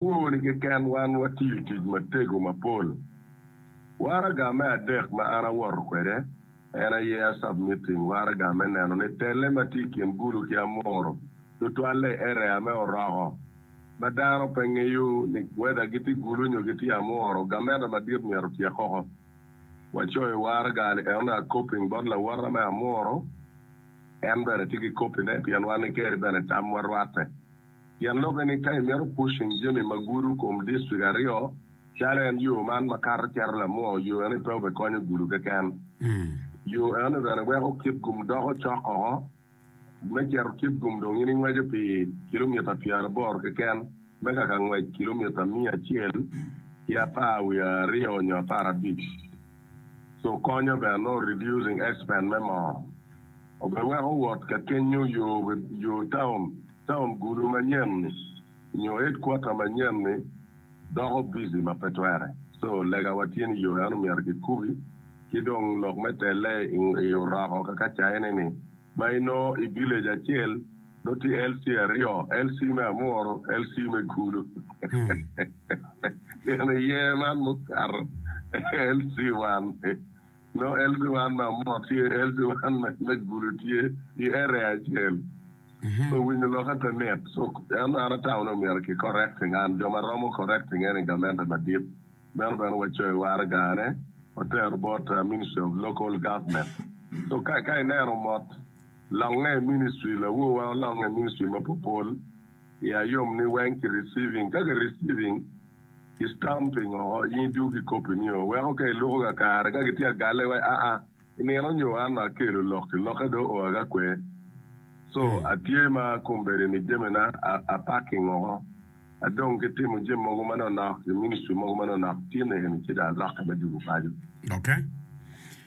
Kwoni keken wan watiyo tic matego mapol. Waraga me adek ma an awoto kwede en aye Asab Meeting, waraga me neno ni telle ma tye i kin Gulu ki Amuru tutwalle i area me Oroko ma dano pe ngeyo ni whether gitye Gulu nyo gitye Amuru. Gamente madit myero otyek koko. Wacoyo waraga-ni enonu a copying bot lawotta me Amuru, en bene tye ki copy-ne pien wan ni Kerry bene tamwa rwatte. Pien lokke ni ka imito pushing jami ma gudo kom district aryo calo en yo man ma kato cito Lamoo, yo eno-ni pe obe konyo gudo keken. Yo eno-ni bene weko kit gum doko cok oko. Me cito kit gum dong in ingweco pi kilomita pyeraboro keken me kaka ngwec kilomita miya acel ki apar wiye aryo nyo apar abic. Co konyo bene nongo reducing expense me moo. Obe weko wot ka kenyo yo taun. taun gulu manyen-ni nyo headquarter manyen-ni doko busy ma pe twere. So, legawa tye ni yoo eno myero kikubi, ki dong lok me telle i oroko kaka caine-ni ma inongo i village acel nongo tye LC aryo, LC me Amuru, LC me Gulu. Gin iye man mukato LC wan. Nongo LB1 ma omok tye LB1 me gulu tye i area acel. So winyo lok ape mit. So en an atamo ni omyero ki correcting and jo ma romo correcting en i gamente madit. Meno bene wa coe waraga ne otero bot ministry of local government. So ka ka ineno mot longe i ministry lawo wa olonge i ministry ma popol i ayom ni weng ki receiving ka ki receiving Itam pingo in idwogo ki kop-pi nio? Weko ka iluko kakare ka gitye ka galle wa, aa, i nino nyo an ma akelo lok-ki, lokke dong oa ki akwer. Co, atye ma kombeddi-ni jamina apakking woko, adong ki timo jami mogo manonok, i ministry mogo manonok, tye nene ci dong alokke me jubo paco.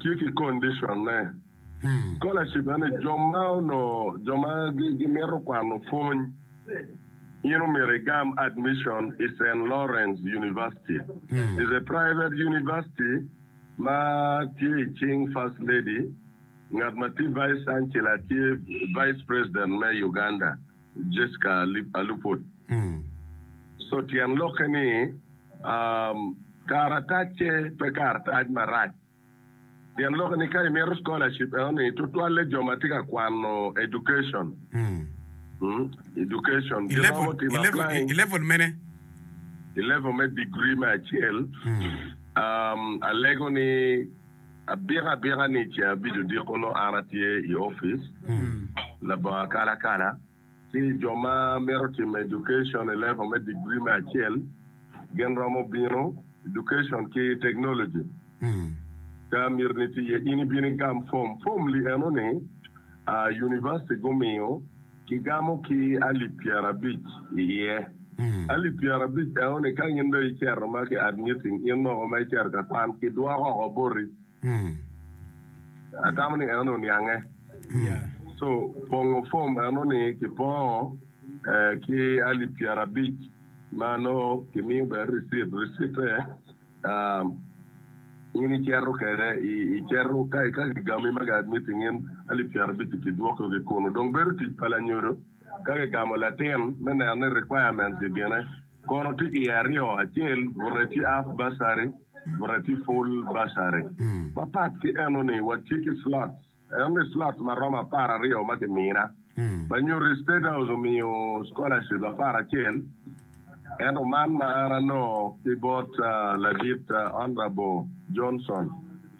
tye ki condition ne. Scholarship eni jo ma onongo jo ma gimito kwano pwony in omyero igam admission i Saint Lawrence University. Is a private university ma tye i cing First Lady ngat ma tye Vice Chancellor tye Vice President me Uganda. Jessica Aluput. So tyen lokke ni karatacce pe karatac marac. Tyen lokke ni ka imito scholarship eno ni tutwalle jo ma tye ka kwano education, education, I level, giromo timo i level, applying i level mene? i level me degree me acel. Alego ni. Abika abika ni ceng abic odiko nongo an atye i opic labongo akalakala ci jo ma mito timo education i level me degree me acel gin romo bino, education ki technology, ka myero ni tye iye in ibino igam form, form li eno ni university gumiyo. Kigamo ki alip pyerabic i iye. Alip pyerabic enoni ka in dong icero ma ki admitting in mogo ma icero ka kwan, kidwoko oko boti. Atamo ni enoni oniange. So, pongo form enoni kipongo ki alip pyerabic ma nongo kimiyo bene receipt. Receipt-te. In icito kede, icito ka gigami ma gad ni tingin alip pyera abic-ci kidwoko ki kunu. Dong bedo tic pa lanyodo ka gigamo latin me neno ni requirements gigine kono tye iye aryo, acel bute tye half bursary bute tye full bursary. Mapat ki enoni watye ki slots. En omi slot ma romo apar aryo ma kimina ma nyuto ni State House omiyo scholarship apar acel, ento man ma an anongo ki bot ladit Honourable Johnson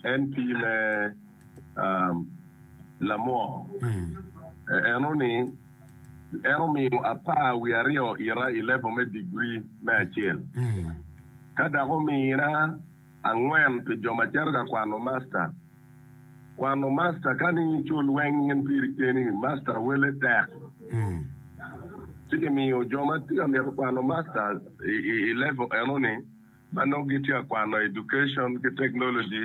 en pii me lamwok eno ni en omiyo apar wiye aryo ita i level me degree me acel ka dok omina Angwen pi jo ma cito ka kwano masta. Kwano masta ka ni icul weng in piri keni, masta wele tek. Ci kimiyo jo ma tye ka mito kwano masta i level eno ni ma nongo gitye ka kwano education ki technology,